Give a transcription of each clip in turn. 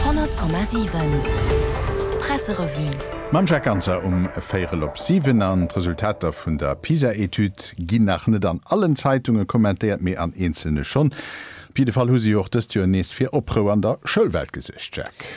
100,7 Presserevue. Mam Jacques Ganser um Véierel op siwen. An d'Resultater vun der PISA-Etüd ginn nach net an allen Zeitunge kommentéiert, mee an eenzelne schonn. Op jidde Fall hu se jo och dëst Joer nees fir Oprou an der Schoulwelt gesuergt, Jacques.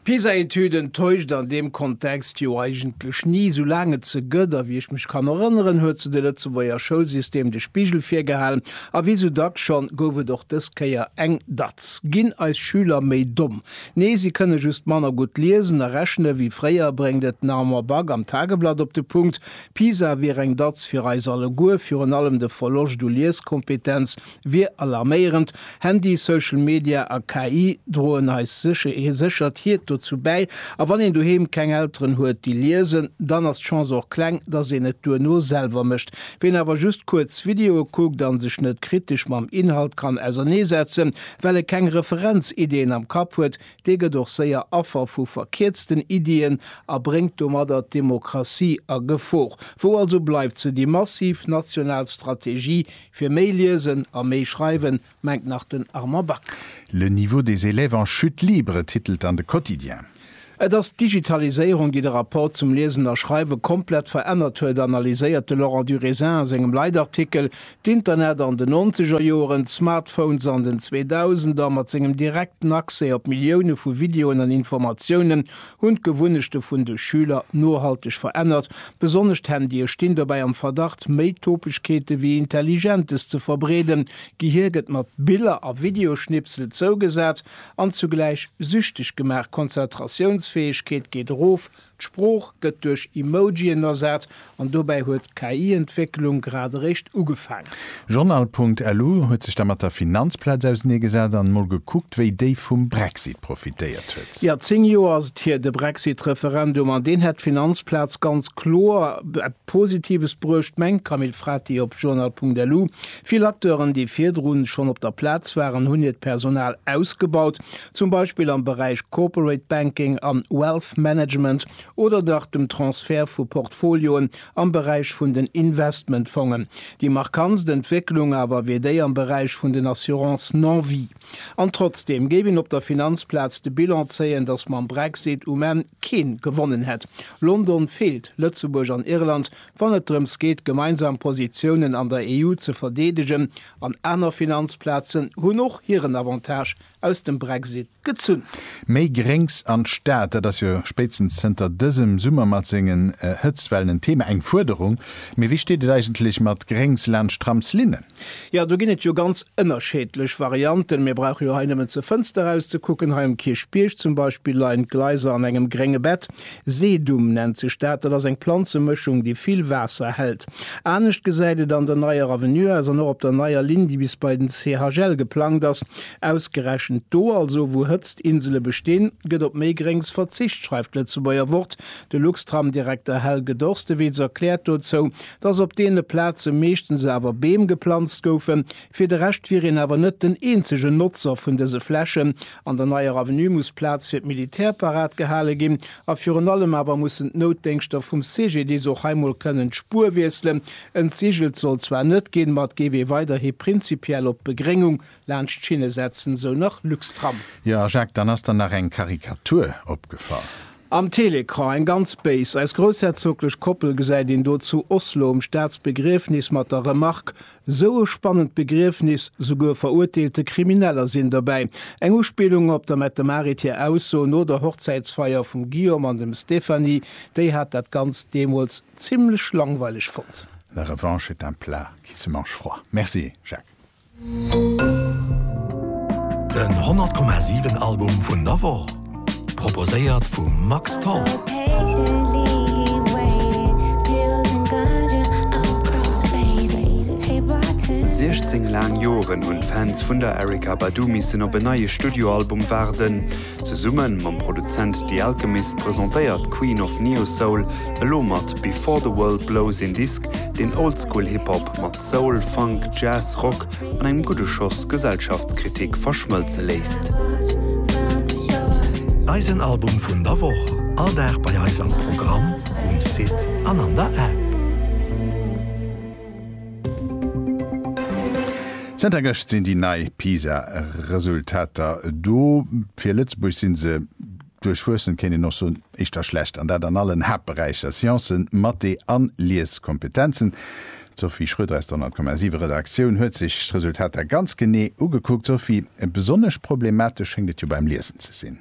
D'PISA-Etüden täuscht an deem Kontext jo eigentlech ni. Sou laang et se gëtt, a wéi ech mech kann erënneren, huet se de Lëtzebuerger Schoulsystem de Spigel virgehalen. A wéi sou dacks schonn, gouf et och dës Kéier eng Datz. Ginn eis Schüler méi domm? Nee, si kënne just manner gutt liesen a rechne wéi fréier, bréngt et den Armand Back am Tageblatt op de Punkt. PISA wier eng Datz fir eis alleguer, virun allem de Verloscht u Lieskompetenz. wier alarméierend. Handy, Social Media a KI droen eis sécher, hir séchert hiert dozou bäi. A wann een doheem keng Elteren huet, déi liesen, dann ass d'Chance och kleng, dass een et duerno selwer mécht. Wien awer just kuerz Videoe kuckt a sech net kritesch mam Inhalt kann auserneesetzen, well e keng Referenziddien am Kapp huet, dee gëtt och séier Affer vu verkierzten Iddien a bréngt domadder d'Demokratie a Gefor. Wou also bleift se, déi massiv national Strategie, Fir méi liesen a méi schreiwen, mengt nach den Armand Back. Le niveau des élèves en chute libre titelt dann de Quotidien. Et ass d'Digitaliséierung, déi de Rapport zum Liesen a Schreiwe komplett verännert huet, analyséiert de Laurent Durisin a sengem Leitartikel. D'Internet an den nonzeger Joeren, d'Smartphones an den Zweedausender, mat sengem direkten Accès op Millioune vu Videoen an Informatiounen, hunn d'Gewunnechte vun de Schüler nohalteg verännert Besonnesch d'Handye stinn dobäi am Verdacht, méi Topegkeete wéi Intelligentes ze verbreeden. D'Gehier gëtt mat Biller a Videoschnipsel zougesat an zugläich süchteg gemaach. D'Konzentratiounsfäegkeet geet erof, d'Sprooch gëtt duerch Emojien ersat an dobäi huet d'KI-Entwécklung grad eréischt ugefaangen. Journal.lu huet sech da mat der Finanzplaz ausenee gesat an mol gekuckt, wéi déi vum Brexit profitéiert huet. Jo, 10 Joer ass et hier, de Brexit-Referendum, an deen hätt d'Finanzplaz ganz kloer eppes Positives bruecht, mengt d'Camille Frati op Journal.lu. Vill Acteuren, déi virdrun schonn op der Plaz waren, hunn hiert Personal ausgebaut, zum Beispill am Beräich Corporate Banking an Wealth Management oder nach dem Transfert vu Portfolioen Am Beräich vun den Investmentfongen. Déi markantst Entwécklung awer wier déi am Beräich vun den Assurances non-vie. An trotzdeem géif een op der Finanzplaz de Bilan zéien, datt mam Brexit um Enn kee gewonnen hätt. London feelt Lëtzebuerg an Irland, wann et drëms geet gemeinsam Positiounen an der EU ze verdeedegen. An aner Finanzplazen hunn och hiren Avantage aus dem Brexit gezunn. Méi Gréngs an d'Stad, dat ass jo spéitstens zënter dësem Summer mat sengen Hëtztwellen en Thema, eng Fuerderung. Mee wéi steet et eigentlech mat Gréngs laanscht d'Tramslinnen? Jo, do ginn et jo ganz ënnerscheedlech Varianten. Mir brauche jo hei nëmmen zur Fënster erauszekucken. Hei um Kierchbierg zum Beispill leien d'Gleiser an engem grénge Bett. Sedum nennt sech dat. Dat ass eng Planzemëschung, déi vill Waasser hält. Anescht gesäit et an der Neier Avenue aus an och op der Neier Linn, déi bis bei den CHL geplangt ass. Ausgerechent do also, wou Hëtztinsele bestinn, gëtt op méi Gréngs verzicht, schreift d'Lëtzebuerger Wort. De Luxtram-Direkter Helge Dorstewitz erkläert dozou, datt op deene Plaze meeschtens awer Beem geplanzt goufen. Fir de Rescht wier een awer net den eenzegen Notzer vun dëse Flächen. An der Neier Avenue muss Plaz fir d'Militär parat gehale ginn. A virun allem awer mussen d'Noutdéngschter vum CGDIS och hei mol kënnen d'Spuer wiesselen. Entsigelt soll zwar net ginn, ma et géif ee weiderhi prinzipiell op d'Begréngung laanscht Schinne setzen, esou nach Luxtram. Jo a Jacques, dann ass der nach eng Karikatur opgefall. Am Télécran, eng ganz béis, Eis groussherzoglech Koppel gesäit een do zu Oslo um Staatsbegriefnis mat der Remark, Esou e spannend Begriefnis, souguer verurteelte Krimineller sinn dobäi. Eng Uspillung op der Mette-Marit hir Ausso no der Hochzäitsfeier vum Guillaume an dem Stéphanie, déi hat dat Ganzt deemools zimmlech langweileg fonnt. La revanche est un plat qui se mange froid. Merci Jacques. Den 100 Komma 7 Album vun der Woch, proposéiert vum Max Tholl. Siechzéng laang Joren hunn d'Fans vun der Erykah Badu missen op en neie Studioalbum waarden. Zesumme mam Produzent The Alchemist presentéiert d'Queen of Neo-Soul elo mat Before the World Blows een Disk, deen Oldschool-Hip-Hop mat Soul, Funk, Jazz, Rock an engem gudde Schoss Gesellschaftskritik verschmëlze léisst. Eisen Album vun der Woch, all Dag bei eis am Programm, um Site an an der App. Zënter gëscht sinn déi nei PISA-Resultater do. Fir Lëtzebuerg si se Duerchwuessend kéint een och soen, éischter schlecht, an dat an allen Haaptberäicher, Sciencen, Mathé an Lieskompetenzen. D'Sophie Schroeder aus der 100,7 Redaktioun huet sech d'Resultater ganz genee ugekuckt. Sophie, besonnesch problematesch schéngt et jo beim Liesen ze sinn.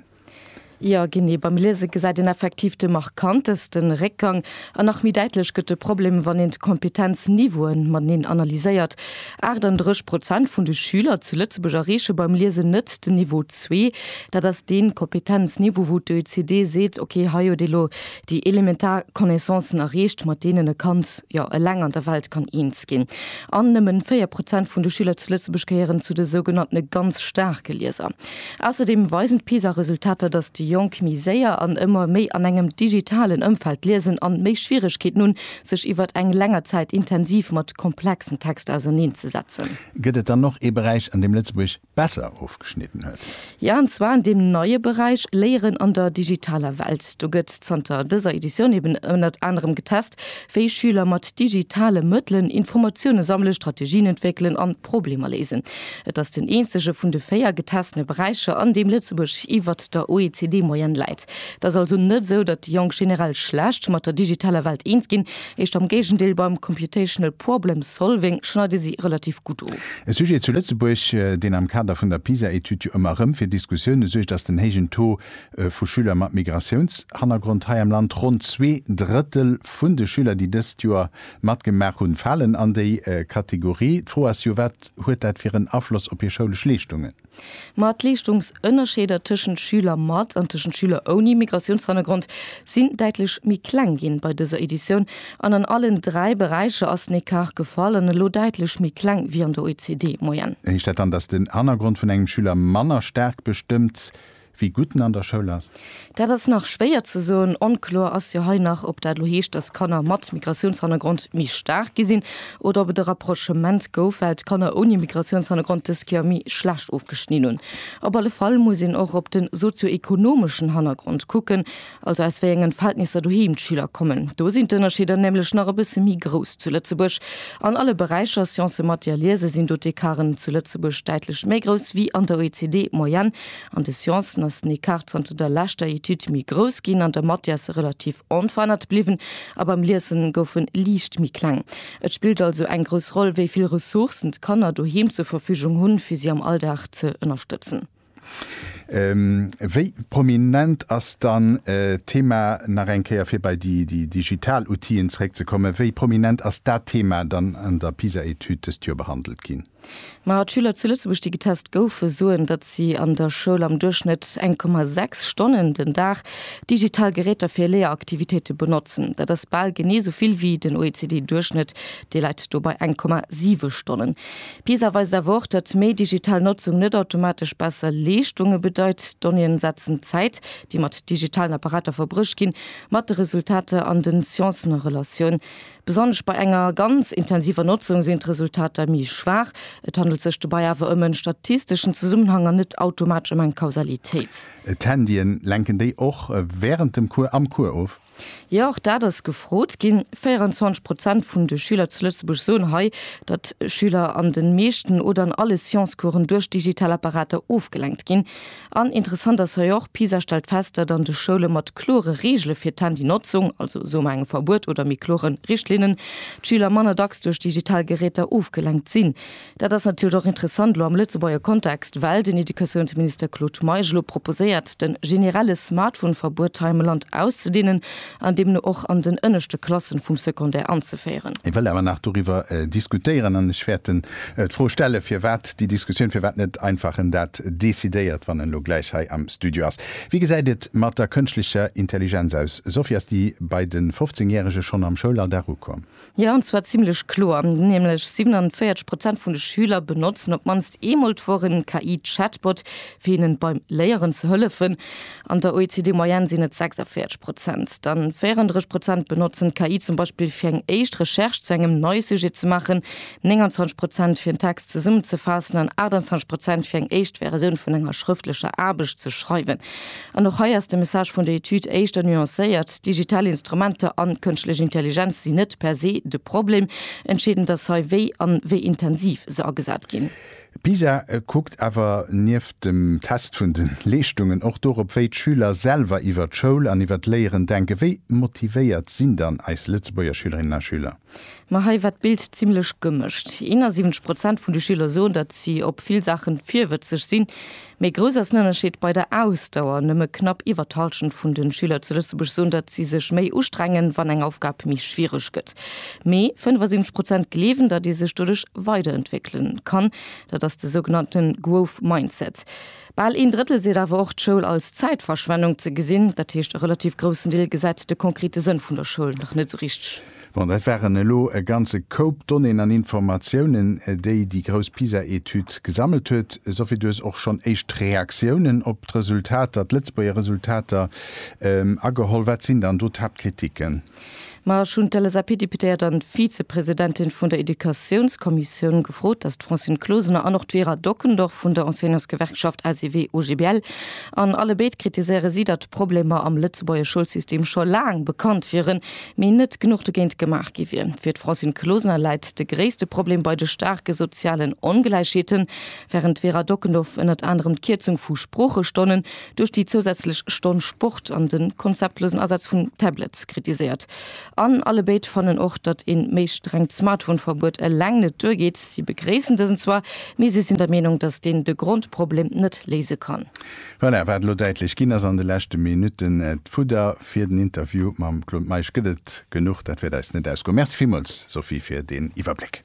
Jo, genee, beim Liese gesäit een effektiv de markantesten Réckgang. An nach méi däitlech gëtt de Problem, wann een d'Kompetenzniveaue mateneen analyséiert. 38 Prozent vun de Schüler zu Lëtzebuerg erreeche beim Liesen net den Niveau zwee. Dat ass dee Kompetenzniveau, wou d'OECD seet, ok, hei huet ee lo déi elementar Connaissancen erreecht, mat deenen e Kand jo eleng an der Welt kann eens ginn. An nëmmen 4 Prozent vun de Schüler zu Lëtzebuerg gehéieren zu de sougenanntene ganz staarke Lieser. Ausserdeem weisen d'PISA-Resultater, datt déi Jonk méi séier an ëmmer méi an engem digitalen Ëmfeld liesen an méi Schwieregkeeten hunn, sech iwwert eng länger Zäit intensiv mat komplexen Texter auserneen ze setzen. Gëtt et dann och ee Beräich, an deem Lëtzebuerg besser ofgeschnidden huet? Jo, an zwar an deem neie Beräich Léieren an der digitaler Welt. Do gëtt zanter dëser Editioun eben ënnert anerem getest, wéi Schüler mat digitale Mëttelen Informatioune sammelen, Strategien entwéckelen an, d'Problemer léisen. Et ass den eenzege vun de véier getestene Beräicher, an deem Lëtzebuerg iwwert der OECD-Moyenne läit. Et ass also net esou, datt déi Jonk generell schlecht mat der digitaler Welt eens ginn, eischt am Géigendeel, beim computational problem solving schneide si relativ gutt of. E Sujet zu Lëtzebuerg, deen am Kader vun der PISA-Etüd jo ëmmer erëm fir Diskussioune suergt, ass den héijen Taux vu Schüler mat Migratiounshannergrond hei am Land. Ronn zwee Drëttel vun de Schüler, déi dëst Joer Matgemaach hunn, falen an déi Kategorie. D'Fro ass jo, wat huet dat fir en Afloss op hir schoulesch Leeschtungen? Ma d'Leeschtungsënnerscheeder tëschent Schüler mat an tëschent Schüler ouni Migratiounshannergrond sinn däitlech méi kleng ginn bei dëser Editioun. An an allen dräi Beräicher ass den Ecart gefall an elo däitlech méi kleng wéi an der OECD-Moyenne. Heescht dat dann, dass den Hannergrond vun engem Schüler manner staark bestëmmt, Wie gutt en an der Schoul ass? Dat ass nach schwéier ze soen. Onkloer ass jo hei nach, ob dat elo heescht, dass Kanner mat Migratiounshannergrond méi staark gi sinn oder ob et e Rapprochement gouf, well d'Kanner ouni Migratiounshannergrond dës Kéier méi schlecht ofgeschnidn hunn. Op alle Fall muss een och op de sozio-ekonomeschen Hannergrond kucken. also aus wéi engen Verhältnisser doheem d'Schüler kommen, do sinn d'Ënnerscheeder nämlech nach e bësse méi grouss zu Lëtzebuerg. An alle Beräicher, Sciencen, Mathé a Liese, sinn do d'Ecarten zu Lëtzebuerg däitlech méi grouss wéi an der OECD-Moyenne. An de Sciencen ass den Ecart zanter der leschter Etüd méi grouss ginn, an der Mathé ass e relativ onverännert bliwwen a beim Liesen gouf e liicht méi kleng. Et spillt also eng grouss Roll, wéi vill Ressourcen d'Kanner doheem zur Verfügung hunn, fir si am Alldag ze ënnerstëtzen. Wéi prominent ass dann d'Thema, nach eng Kéier fir bei déi digital Outill'en zeréckzekommen, wéi prominent ass dat Thema dann an der PISA-Etüd dëst Joer behandelt ginn? Ma d'Schüler zu Lëtzebuerg, déi getest goufen, soen, datt si an der Schoul am Duerchschnëtt eng Komma sechs Stonnen den Dag digital Geräter fir Léieraktivitéite benotzen. Dat ass bal genee esou vill wéi den OECD-Duerchschnëtt, dee läit do bei eng Komma siwe Stonnen. PISA weist awer och, datt méi digital Notzung net automatesch besser Leeschtunge bedeit. D'Donnéeën setzen d'Zäit, déi mat digitalen Apparater verbruecht ginn, mat de Resultater an den Sciencen a Relatioun. Besonnesch bei enger ganz intensiver Notzung sinn d'Resultater méi schwaach. Et handelt sech dobäi awer ëm en statisteschen Zesummenhang an net automatesch ëm eng Kausalitéit. D'Handyen, lenken déi och wärend dem Cours am Cours of? Jo, och dat ass gefrot ginn. 24 Prozent vun de Schüler zu Lëtzebuerg soen hei, datt Schüler an de meeschten oder an alle Science-Coursen duerch digital Apparater ofgelenkt ginn. An interessant ass hei och, PISA stellt fest, datt an de Schoule mat klore Reegele fir d'Handynotzung, also soe mer engem Verbuet oder méi kloren Richtlinnen, d'Schüler manner dacks duerch digital Geräter ofgelenkt sinn. Dat ass natierlech och interessant elo am Lëtzebuerger Kontext, well den Educatiounsminister Claude Meisch elo proposéiert, de generelle Smartphone-Verbuet hei am Land auszedeenen an deemno och an den ënneschte Klassen vum Secondaire anzeféieren. Ech wëll awer nach doriwwer diskutéieren an ech wäert d'Fro stellen, firwat déi Diskussioun, firwat net einfach en dat decidéiert, wann en elo gläich hei am Studio ass. Wie gesäit et mat der kënschtlecher Intelligenz aus? Sophie, ass déi bei de 15 Järege schonn am Schoulalldag ukomm? Jo, an zwar zimmlech kloer, nämlech 47 Prozent vun de Schüler benotzen op d'mannst eemol d'Woch en KI-Chatbot, fir hinnen beim Léieren ze hëllefen. An der OECD-Moyenne sinn et 46 Prozent. Dann 34 Prozent benotzen d'KI zum Beispill, fir eng éischt Recherche zu engem neie Sujet ze maachen, 29 Prozent, fir en Text zesummenzefaassen an 28 Prozent, fir eng éischt Versioun vun enger schrëftlecher Aarbecht ze schreiwen. An och hei ass de Message vun der Etüd éischter nuancéiert, Digital Instrumenter an kënschtlech Intelligenz sinn net per se de Problem, entscheedend ass hei wéi an wéi intensiv se agesat ginn. Pisa kuckt awer nieft dem Test vun de Leeschtungen och dorop, wéi d'Schüler selwer iwwer d'Schoul an iwwer d'Léieren denken. Wéi motivéiert sinn dann eis Lëtzebuerger Schülerinnen a Schüler? Ma hei war d'Bild zimlech gemëscht. 71 Prozent vun de Schüler soen, datt si op vill Saachen virwëtzeg sinn. Méi grouss ass den Ënnerscheed bei der Ausdauer, Nëmme knapp iwwer d'Hallschent vun de Schüler zu Lëtzebuerg soen, datt si sech méi ustrengen, wann eng Aufgab méi schwiereg gëtt. Mee 75 Prozent gleewen, datt ee sech doduerch weiderentwéckele kann. Dat ass de sougenannte Growth Mindset. Bal een Drëttel seet awer och, d'Schoul als Zäitverschwennung ze gesinn. Dat heescht, e relativ groussen Deel gesäit de konkrete Sënn vun der Schoul nach net esou richteg. Bon, dat waren elo e ganze Koup Donnéeën an Informatiounen, déi déi grouss PISA-Etüd gesammelt huet. Sophie, du hues och schonn éischt Reaktiounen op d'Resultater, d'Lëtzebuerger Resultater, ageholl. Wat sinn dann do d'Haaptkritiken? Ma ech hunn d'LSAP-Deputéiert an d'Vizepresidentin vun der Educatiounskommissioun gefrot, dass d'Francine Closener an och d'Vera Dockendorf vun der Enseignantsgewerkschaft ACV-OGBL. An allebéid kritiséiere si, datt d'Problemer am Lëtzebuerger Schoulsystem scho laang bekannt wieren, mee net genuch dogéint gemaach gi wier. Fir d'Francine Closener läit de gréisste Problem bei de staarke sozialen Ongläichheeten, wärend d'Vera Dockendorf ënnert anerem d'Kierzung vu Sproochestonnen duerch déi zousätzlech Stonn Sport an de konzeptlosen Asaz vun Tablets kritiséiert. An alle béid fannen och, datt ee méi strengt Smartphone-Verbuet eleng net duergeet. Si begréissen dësen zwar, mee si sinn der Meenung, datt deen de Grondproblem net léise kann. Voilà, wat elo däitlech ginn ass an de leschte Minutten, d'Fudder Fir den Interview mam Claude Meisch gëtt et genuch, dat wäert eis net ausgoen. Merci villmools Sophie fir deen Iwwerbléck.